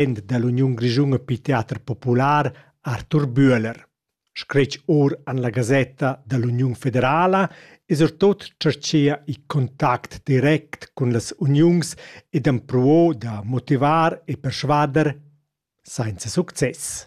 president dall'Uniun grischuna per teater popular Arthur Bühler. Scretg or an la gasetta dall'Uniun federala es er tot cerchea i contact direct cun las uniuns ed empruo da motivar e persvader sainza success.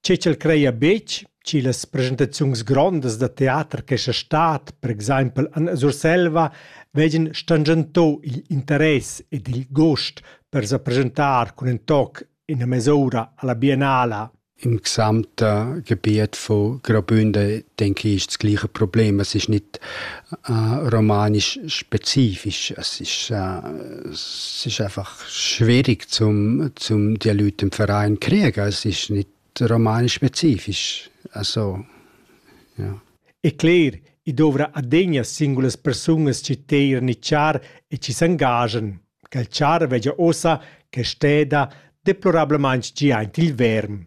Che ch'el creia betg chi las presentaziuns grondas da teater che sia stad, per exaimpel an Surselva, vegin stangento igl interess ed il gust per sa presentar cun in toc ina mes'ura alla biennala. Im gesamten Gebiet von Graubünden denke ich das gleiche Problem. Es ist nicht äh, romanisch spezifisch. Es ist, äh, es ist einfach schwierig zum, zum die Leute im Verein kriegen. Es ist nicht romanspezifisch. Also, ja. E cler, i dovra adegna singulas persunas ci teir ni char e ci s'engagen, che il char vegia ossa che steda deplorablement gi aint il verm.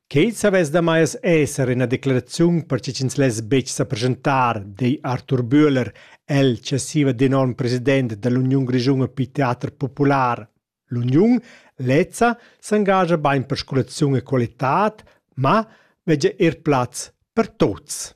Quei savess damai esser ina declaraziun per che ch'ins less betg sa presentar, di Arthur Bühler, el che siva d'enorm president dall'Uniun grischuna per teater popular. L'uniun lezza s'engascha bein per scolaziun e qualitad, ma vegia er plaz per tuts.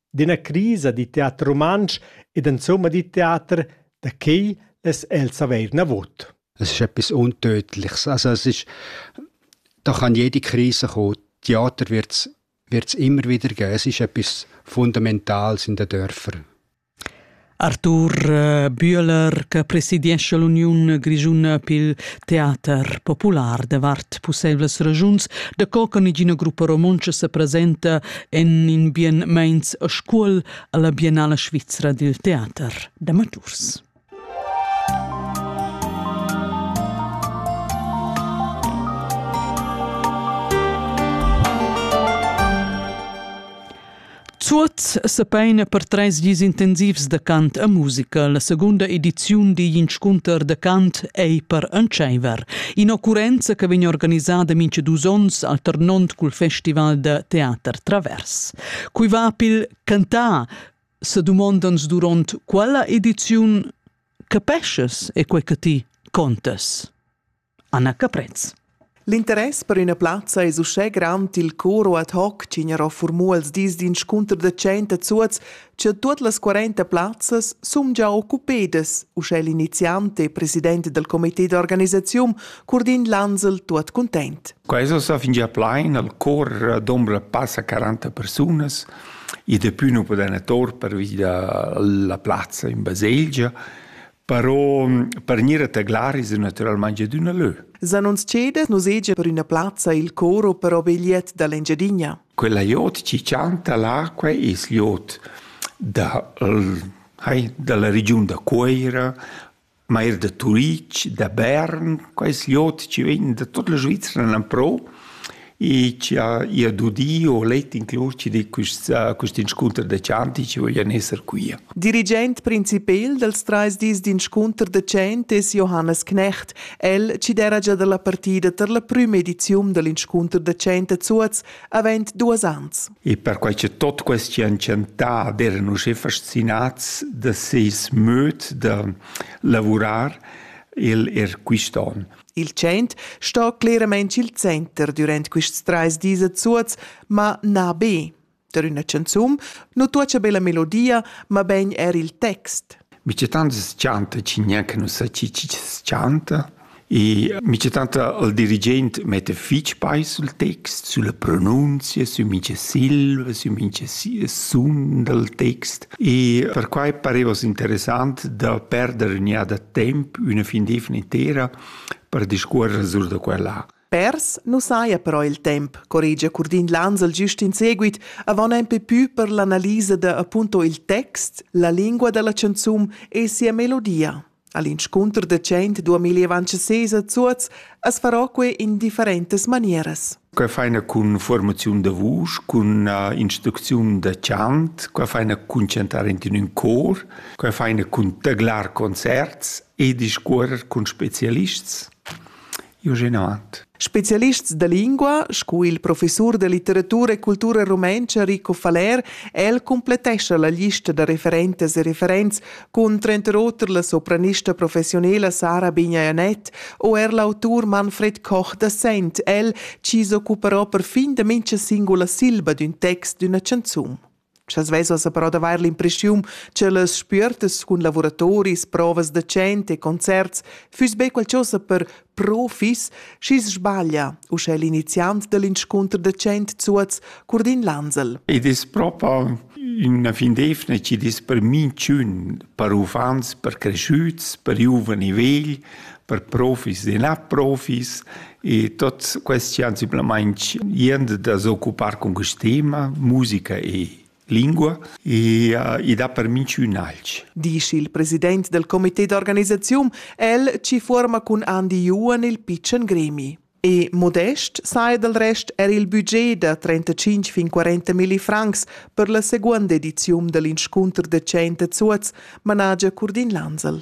d'üna crisa da teater rumantsch ed insomma da teater, da quai less els avair navot. Es ist etwas Untötliches. Also es ist, da kann jede Krise kommen. Theater wird es immer wieder geben. Es ist etwas Fundamentales in den Dörfern. Artur Bühler che presidiescha l'uniun grischuna pil teater popular davart pusseivlas regiuns, da co che negina gruppa romontscha se presenta en in bien meins a scuol alla Biennala svizra dil teater d'amaturs. Zuoz sepeina per treis dis intensivs da cant e musica. La segunda ediziun digl inscunter da cant ei per entscheiver. In'occurrenza che vegn organisada mincha dus onns alternond cul festival da teater Travers. Cui va pil cantar se dumondans duront quella ediziun capeschas e quei che ti contas? Anna Caprez. L'interess per üna plazza es uschè grand i'l coro ad hoc chi gnarò furmù als dis d'inscunter da tschient a Zuoz, cha tuot las 40 plazzas sun già occupedas, uschè l'iniziant e president dal comité d'organisaziun Curdin Lansel tuot cuntent. Quaiso sa fingià plain, al cor dombra passa 40 persunas, i depü nu podena tor pervi da la plazza in baselgia, Però per gnir a taglar es natüralmaing adüna lö. S'annunzchedes nus hegia per üna plazza il coro per obegliet da l'Engiadina. Quella jot ci chanta l'acqua es jot da, hai, dalla regiun da Cuoira, ma er da Turic, da Bern, quais jot ci vegn da tot la Svizzera nan pro e chi ha eir dudi o let inclus di quist quist inscunter da chanti chi voglian esser quia. Dirigent principel dals trais dis d'inscunter da chant es Johannes Knecht. El chi d'era già da la partida tar la prüma ediziun da l'inscunter da chant a Zuoz avent duos ans. E perquai che tot questi han chantà ed erano usché fascinats da seis möd da lavurar, el er quist'on. Il tschient sto cleramain il center durant quests trais dis a Zuoz, ma na be. Der üna chanzun nu tuocha be la melodia, ma ben er il text. Mi c'è tanto scianta cigna che non sa ci ci scianta e mi c'è tanto il dirigente mette fitch pai sul text, sulle pronunzie, su mince silve, su mince sund del text E perquai pareva interessant da perder in iada temp üna fin d'eivna intera per discuorrer sur da quella. Pers nu saja però il temp, corregia Curdin Lansel gist in seguit, avant nempe pü per l'analisa da appunto il text, la lingua da la chanzun e sia melodia. All'inscunter da tschient duamillia van ses a Zuoz as farò que in differentas manieras. Qua faina cun formaziun da vusch, cun uh, instrucziun da chant, qua faina cun chantar in ün cor, qua faina cun taglar concerts e discuorrer cun specialists. Jugenat. Spezialists da lingua, sco il professur da litteratura e cultura rumentscha Rico Faller, el complettescha la lista da referentas e referents cun tranter oter la sopranista professiunela Sara Bignajanet o er l'autur Manfred Koch da Sent, el chi s'occuperò perfin da mincha singula silba d'ün text d'üna chanzun. Sch'els vesas però d'avair l'impreschiun ch'ellas spüertas cun lavuratoris, provas da chant e concerts füss be qualchosa per profis, schi's sbaglia uschè l'iniziant da l'inscunter da chant Zuoz Curdin Lansel. Id es propa üna findefna chi'd es per minchün, per uffants, per creschüts, per giuvani vegl, per profis e na profis E tots questi han simplamaing jent da s'occupar cun quist tema, musica e lingua, e uh, id ha per minch ün alch. Disch il president del comité d'organisaziun, el ci fuorma cun Andi Juan il pitschen gremi. E modest sai del rest er il budget da 35 fin 40 milli francs per la seconda ediziun dell'inscunter decent a Zuoz, managia Curdin Lansel.